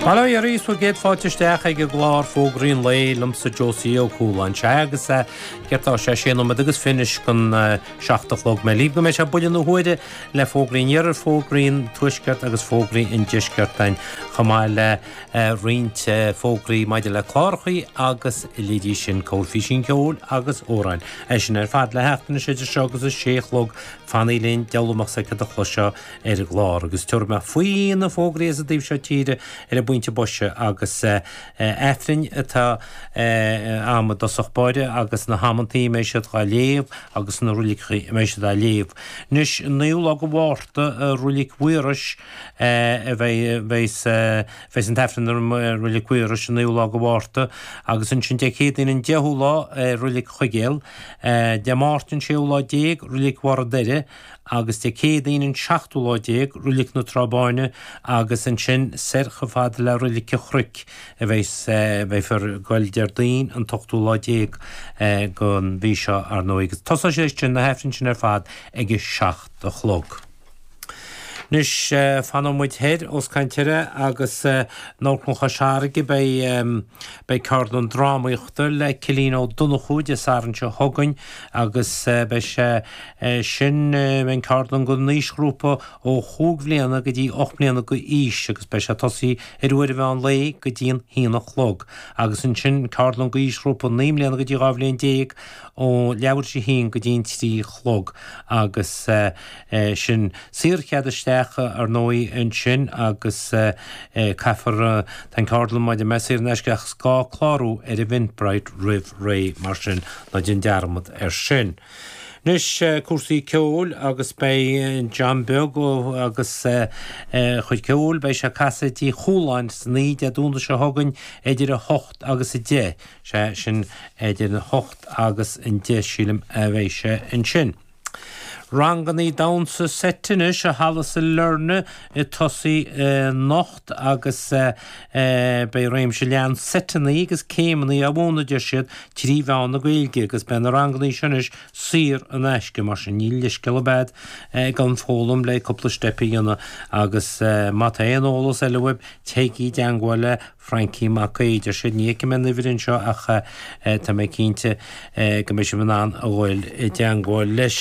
Bail ó Dhia oraibh is céad fáilte isteach ag an gclár Fógraí an Lae liomsa Josie Ó Cualáin. Sea, agus eh, céard tá sé, sé nóiméad agus fiche chun eh, seacht a chlog. Mé libh go mbeidh sé buille na huaire le fógraí an Iarthair, fógraí an Tuaiscirt agus fógraí an Deiscirt ann chomh maith le eh, roinnt eh, fógraí maidir le clárachaí agus leithéidí sin corrphísín ceoil agus amhráin. Iad sin ar fad le theacht anseo idir seo agus a sé a chlog fanaigí linn dealbh amach s'aici do chlos seo ar an gclár agus tabharfaidh mé faoi na fógraí as an dtaobh seo tíre ar an bpointe boise agus Aifrinn atá a'm i dtosach báire agus na hamantaí a mbeidh siad dhá léamh agus na roiliceachaí a mbeidh siad á léamh. Anois an naoú lá go Mhárta Roilic Mhaorais a bheidh bheidh sa bheidh an tAifreann ar an Roilic Mhaorais an naoú lá go Mhárta agus ansin Dé Céadaoin an deichiú lá Roilic Chuigéil, Dé Máirt an séú lá déag Roilic Bharr an Doire, agus Dé Céadaoin an seachtú lá déag Roilic na Trá Báine agus ansin soir chomh fada le Roilic a' Chruic a bheidh bheifear ag goil Déardaoin an t-ochtú lá déag gon mhí seo ar ndóigh agus tosóidh sé sin na hAifrinn sin ar fad ag a seacht a chlog. Anois fanann muid thoir os coinn tíre agus in Amharclann Chois Fharraige beidh beidh ceardlann drámaíochta le Cillian Ó Donnchú Dé Sathairn seo chugainn agus beidh sé é sin, beidh an ceardlann gon aoisghrúpa ó chúig bhliana go dtí ocht mbliana d'aois agus beidh sé ag tosaí ar uair an mheán lae go dtí an haon a chlog agus ansin ceardlann go aoisghrúpa naoi mbliana go dtí dhá bhliain déag ó leathuair théis a haon go dtí an trí a chlog agus sin saor chead isteach ar ndóigh ansin agus caithfear tá an ceardlann mar a deir mé saor in aisce ach is gá clárú ar Eventbrite roimh ré mar sin ná déan dearmad air sin. Anois cúrsaí ceoil agus beidh John Beag Ó agus a chuid ceoil, beidh sé ag casadh i dTigh Chualáin sna hAille Dé Domhnaigh seo chugainn idir 8 agus 10, sea, sin idir an 8 agus an 10 sílim a bheidh sé ansin. Rangannaí damhsa seite anois i Halla Sailearna ag tosaí anocht. agus beidh réimse leathan seiteanna agus céimeanna á mhúineadh, a deir siad, trí mheán na Gaeilge agus beidh na ranganna seo anois saor in aisce, mar sin níl leithscéal ar bith agat gan foghlaim le cúpla steip a dhéanamh agus má tá aon eolas eile uaibh, téigí i dteangmháil le Frankie Mac Aoidh, a deir siad. Ní fheicim aon uimhir anseo ach tá mé cinnte go mbeidh sibh in ann a dhul i dteangmháil leis.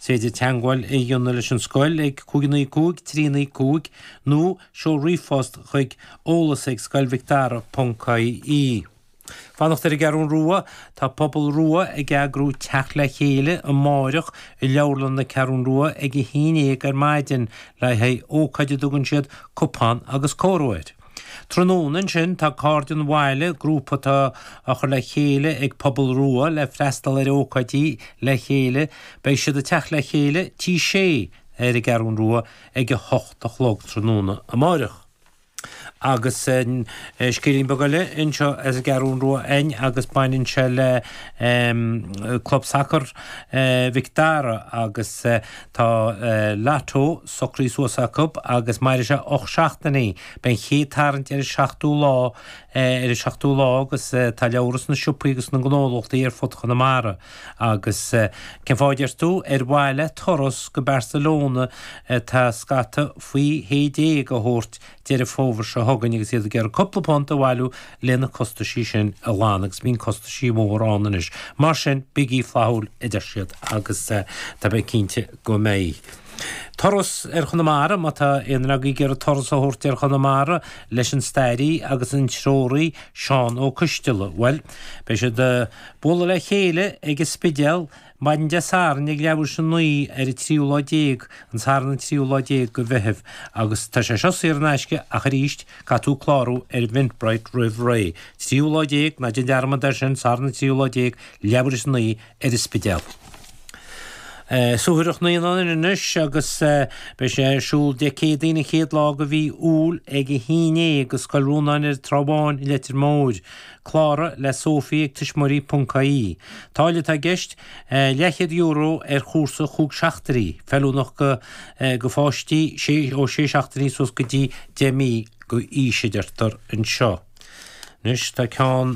Is féidir teagmháil a dhéanamh leis an scoil ag 595 395 nó seol ríomhphost chuig eolas ag scoil mhic dara ponc ie. Fanacht ar an gCeathrún Rua Tá Pobal Rua ag eagrú teacht le chéile amárach i Leabharlann na Ceathrún Rua ag a haon dhéag ar maidin le haghaidh ócáid a dtugann siad 'Cupán agus Cór' air. Tráthnóna ansin tá Cairde an Bhaile, grúpa atá á chur le chéile ag Pobal Rua le freastal ar ócáidí le chéile, beidh siad ag teacht le chéile Tigh Sé ar an gCeathrún Rua ag a hocht a chlog tráthnóna amáireach. Agus scéilín beag eile anseo as an gCeathrún Rua a'inn agus baineann sé le Club Sacar Mhic Dara agus. Tá Lotto socraí suas acu agus mairfidh sé ocht seachtainí. Beidh an chéad tarraingt ar an seachtú lá ar an seachtú lá agus tá leabhra sna siopaí agus sna ngnólachtaí ar fud Chonamara. Agus cén fáth a deir tú? Ar mhaithe le turas go Barcelona atá scata faoi shé déag a thabhairt Deireadh Fómhair seo chugainn agus iad ag iarraidh cúpla punt a bhailiú le na costaisí sin a ghlanadh agus bíonn costaisí mór ann anois. Mar sin, bígí flaithiúil a deir siad agus tá mé cinnte go mbeidh. Turas ar Chonamara Má tá aon dream ag iarraidh turas a thabhairt ar Chonamara leis an stairí agus an treoraí Seán Ó Coistealla, bhuel, beidh siad ag bualadh le chéile ag an Spidéal Maidin Dé Sathairn ag leathuair théis a 9 ar an tríú lá déag an Satharn an tríú lá déag go Mheithimh agus tá sé seo saor in aisce ach arís caithfidh tú clárú ar Eventbrite roimh ré. Tríú lá déag, ná déan dearmad ar sin, Satharn an tríú lá déag, leathuair théis a 9 ar an Spidéal. Suathaireacht Naíonán anois agus beidh sé ar siúl Dé Céadaoin an chéad lá go mhí Iúil ag a haon i.n. ag Scoil Rónáin ar an Trá Bháin i Leitir Móir. Cláraigh le Sophie ag tuismitheoirí.ie Táille atá i gceist, Leathchéad Euro ar chúrsa chúig seachtainí, feiliúnach go pháistí ó sé seachtainí suas go dtí deich mí go aois, a deirtear anseo. Anois tá ceann.